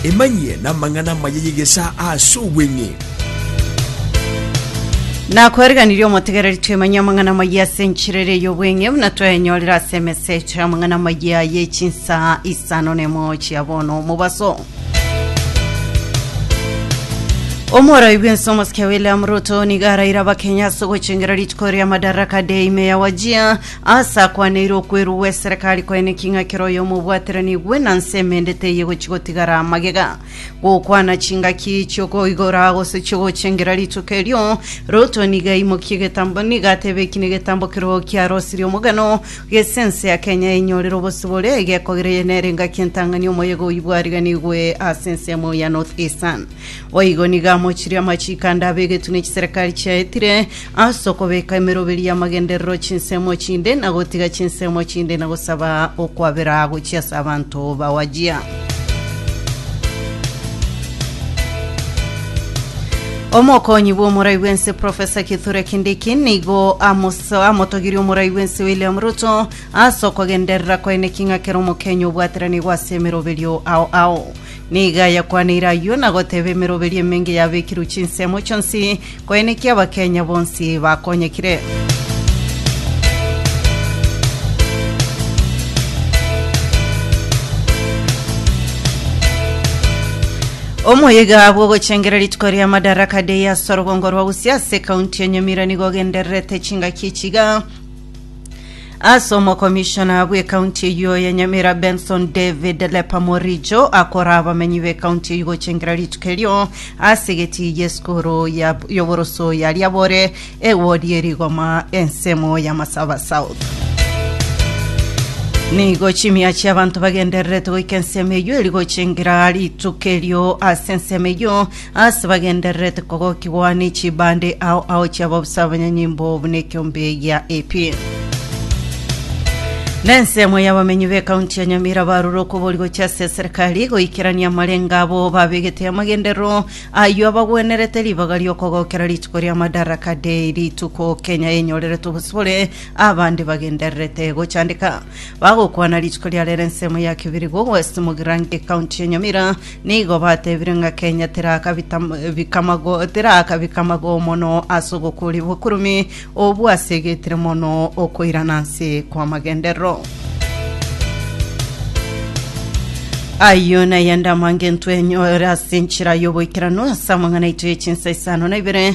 Emanyie namang'ana amaya y'egesaa aase obweng'e. Nakoriganirie omotegereri twemanye amang'ana amaya ase enchera ere y'obweng'e buna twayenyorire ase emesa eto amang'ana amaya ye chinsaa isano nemo chia bono omobaso. Omoroi bwense omosike William Ruto niga araire abakenya ase ogochengera rituko ria Madaraka Day ime ya Wajir Aase akwaneire okwerwa gw'eserekari kwaine king'a kera oyomobwateranigwe na nse emende teiyo gochigotigara magega gokwana chingaki chiokoigora gose chiogochengera rituko erio. Ruto nigo aimokie egetambo nigo atebe eki negetambo kerogo kiarosirie omogano gese ense ya Kenya enyorere obosibore egekogera eye nere engaki entang'ani omoyega oyio bwariganigwe ase ensemo ya North Eastern. Boigo nigo amochirie amachiiko ande abegetwe ne chiserekari chiaetire, ase okobeka emeroberi y'amagenderero chinsemo chinde, na gotiga chinsemo chinde, na gosaba okwabera gochia ase abanto bawajia. Omokonyi bw'omorai bw'ense Profesa Kithure Kindiki nigo amoso- amotogirie omorai bw'ense William Ruto ase okogenderera kwaye neking'akera Omokenya obwateranigwe ase emeroberio ao ao. Nigo ayakwaniire ayio na goteba emeroberio emenge yabekirwe chinsemo chionsi, koeneki Abakenya bonsi bakonyekire. Omoyiga bw'ogochengera rituko ria Madaraka Day ase orogongo rwa Gusii ase kaunti ya Nyamira nigo ogendererete chingaki echiga Ase omokomishona bw'ekaunti eyio ya Nyamira Benson David Lepa Morijo akora abamenyi b'ekaunti eyio gochengera rituko erio ase egeti y'esukuru ya- y'oboroso ya Riabore ewodi erigoma ensemo ya Masaba South nigo chimia chi'abanto bagendererete goika ensemo eyio eri gochengera rituko erio ase ensemo eyio Ase bagendererete kogokigwa ne chibande ao ao chi'ababusa abanyanyimbo buna ekiombe gia AP. Nensemo y'abamenyi b'ekaunti ya Nyamira barure okobori gochia ase eserikari goikerania amarengo abo babegete amagenderero ayio abagwenerete ribaga ri'okogokera rituko ria Madaraka Day, rituko Kenya enyorerete obosibore abande bagendererete gochandeka. bagokwana rituko ria rere ensemo ya Kibirigo West Mugirange county ya Nyamira nigo batebire ng'a Kenya tirakabita bikamago tirakabika mago mono ase ogokori bokurumi obwo asegetire mono okoirana ase kwa magenderero ayo nayende amange ntwenyore ase enchera y'oboikeranu ase amang'ana aito y'echinsa isano na ibere